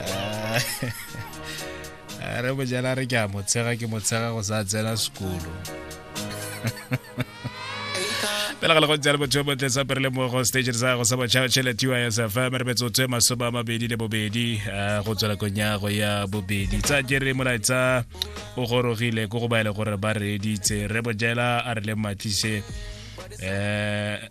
ah, a re bojala re ke a motshega ke motshega go sa tsena sekolo pele ga le go tsela botho bo tletsa pere le mo go stage sa go sa botšha tšhelete ya sa fa mere betso tse masome a mabedi le bobedi eh, go tswela konyago ya bobedi tsa jere molaetsa o gorogile ko go baele gore ba reeditse re bojela a re le matlise um eh,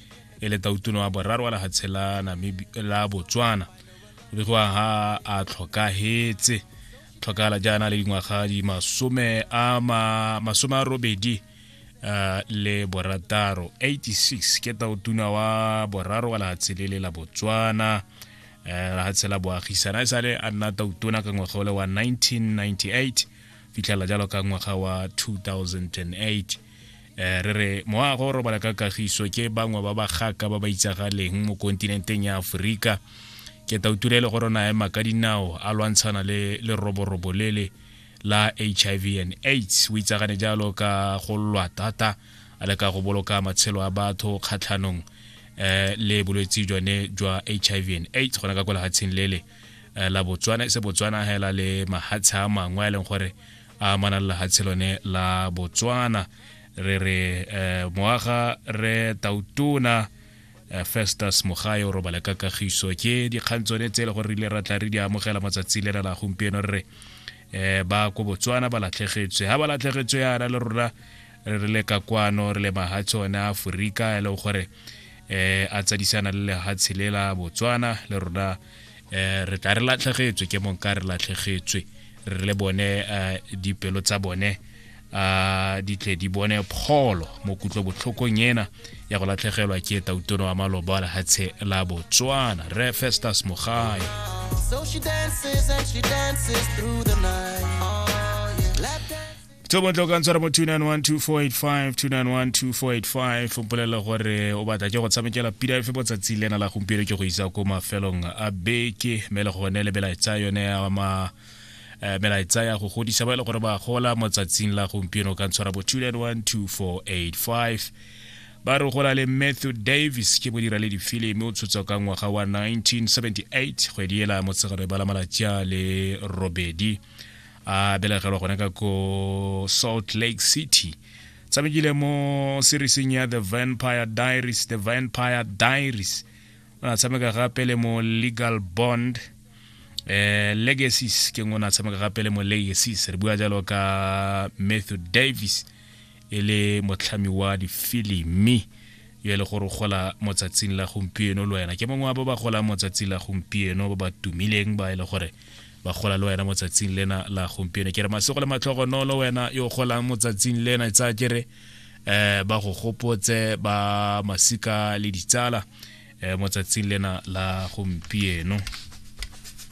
e le tautone wa boraro wa lefatshe la la botswana o begiwa ha a tlhokagetse tlhokagala jaana le dingwaga di masome a masome a robedi uh, le borataro 86 ke tautuna wa boraro wa lefatshe le le la botswana eh, lefatshe la boagisana e sale a nna tautona ka ngwaga ole wa 1998 fitlhela jalo ka ngwaga wa 2008 Eh, re re moago o robala ka kagiso ke bangwe ba bagaka ba ba itsagaleng mo kontinenteng ya aforika ke tauture le gore nae maka dinao a lwantshana le leroborobo lele la hiv and aids o itsagane jalo ka go lwa thata a le ka go boloka matshelo a batho kgatlhanong eh, le bolwetse jone jwa hiv and aids gona ka kwa lehatsheng lele eh, la botswana e se botswana hela le mahatshe a mangwe a e leng gore a mana le lehatshe lone la botswana re re eh, moaga re tautona eh, festus mogae o robale ka kagiso ke dikgang tsone tse e le gore re ile ra tla re di amogela matsatsi le na la gompieno re re eh, ba ko botswana ba latlhegetswe ga ba latlhegetswe yana le rona re re le ka kwano re le mahatshe one a aforika e leng gore eh a tsadisana le lehatshe le la botswana le rona eh re tla re latlhegetswe ke mong ka re latlhegetswe re le bone eh, dipelo tsa bone a di tle di bone pholo mo kutlo botlhokong ena ya go latlhegelwa ke tautono wa maloba lehatshe la botswana re festus mogae so she dances and she dances through the night tso bontle o ka ntshwara mo 2912485 o mpolelela gore o batla ke go tshamekela pira efe mo tsatsi lena la gompieno ke go isa ko mafelong a beke mme le gone le melaetsa yone ya ma eh, melaetsa ya go godisa ba e le gore ba gola mo tsatsing la gompieno o ka ntshwara mo 2912485 ba re gola le matthew davis ke modira le difilimi o tshotswa ka ngwaga wa 1978 kgwedi ela motsegare ba la malatsi a le robedi a belegelwa gone ka ko salt lake city tshamekile mo serieseng ya the vampire diaries the vampire diaries o ne a tshameka gape le mo legal bond eh legacies ke ngwe o ne a tshameka gape le mo legacies re bua jalo ka matthew davis e le motlhami wa difilimi yo e le gore o gola mo tsatsing la gompieno le wena ke mongwe wa ba ba golang mo tsatsing la gompieno ba ba tumileng ba e le gore ba gola le wena motsatsing lena la gompieno ke re masego le matlhogonolo wena yo golang motsatsing lena e tsaya kere um ba go gopotse ba masika le ditsala um motsatsing lena la gompieno